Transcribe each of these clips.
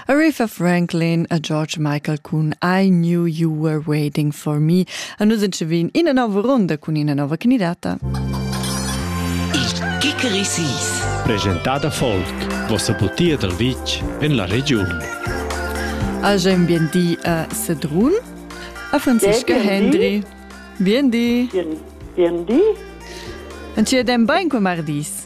Aretha Franklin a George Michael cun I Knew You Were Waiting For Me a nus entschevin ina nova ronda cun ina nova candidata. Il Kikerisis Presentada folk, vossa butia dal vitg en la regiun. Age bien di a Sedrun, a Franziska Hendry. Bien di. Bien, bien di. En ci den bain cum ardis.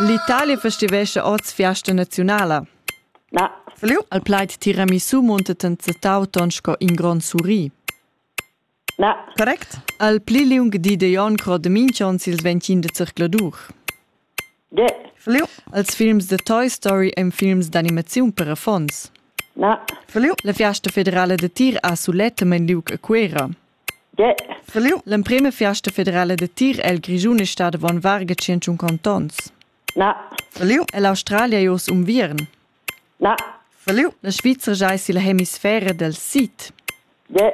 L'Italia festivescha oz fiasta naziunala. Na. Feliu? Al plaid tiramisu muntet en setau ton sco in gron suri. Na. Correct? Al pli liung di de Jon cro de Minchons ils ventin de circladur. De. Feliu? Als films de Toy Story ein films d'animaziun per affons. Na. Feliu? La fiasta federala de tir ha sulet men liug a Cuera. L'emprema fiasta federala da tir el Grischun è stada avon varga tschient contonts. Na. E l'Australia è oz unviern. Na. La Svizra è sia hemisfera del sid. Ja.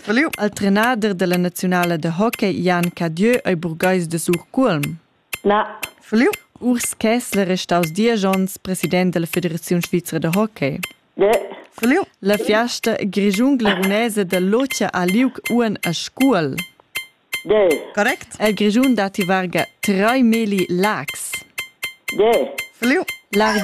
Il trenader della nazionale de hockey Jan Cadieu ei burgais de Surculm. Na. Fliu? Urs Kessler è staus diesch onns president dalla Federaziun svizra da hockey. Ne. Fliu? La fiasta grischun-glerunesa da Lothia ha liug uonn a Scuol. Ne. Correct? El Grischun datti varga trai meli Laax. Ne. Fliu? Larg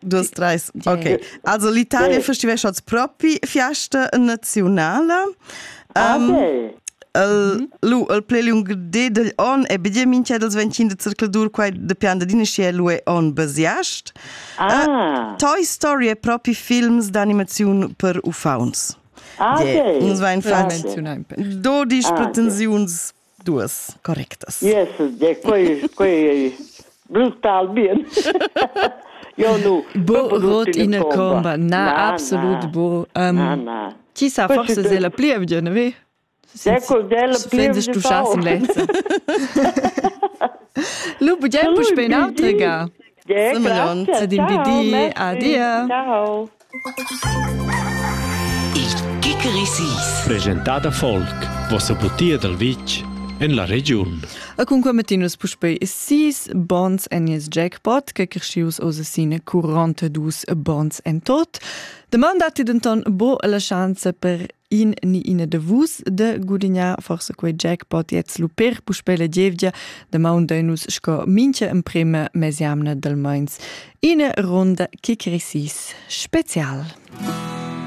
Dus, treis. Ok. Also l'Italia cool. festivescha propi fiasta nazionala. Um, okay. El, lu, el plei liung de degl on e bidie minchia dels ventgin de circladur quai de pianda dinastia lu e on besiast. Ah. Uh, Toy Story è propi films d'animaziun per uffauns. Ah, okay. Yeah. Uns vain fatg 12 ah, pretensiuns duas correctas. Yes, quei, quei ei brutal bien. Io nu. Bo rot ina comba. Na, absolut bo. Um, Ti sa forse se la plievgia, ne ve? Ecco, della plievgia. Du schas in lenza. Lu bugiam puspei in autre ga. Semenon, sedim di di, adia. Ciao. Il Gickerissis presentat da Volk, vossa butia dal vitg en la regiun. A cun commettinus puspei sis bons en il jackpot che crescius oz sine 42 bons en tot. Demanda ti denton bo la chance per in ni ina de vus de gudignar forse quei jackpot jetzt luper puspe la gievgia de maun de nus sco mincha emprema mesiamna del meins ina ronda che cresis special.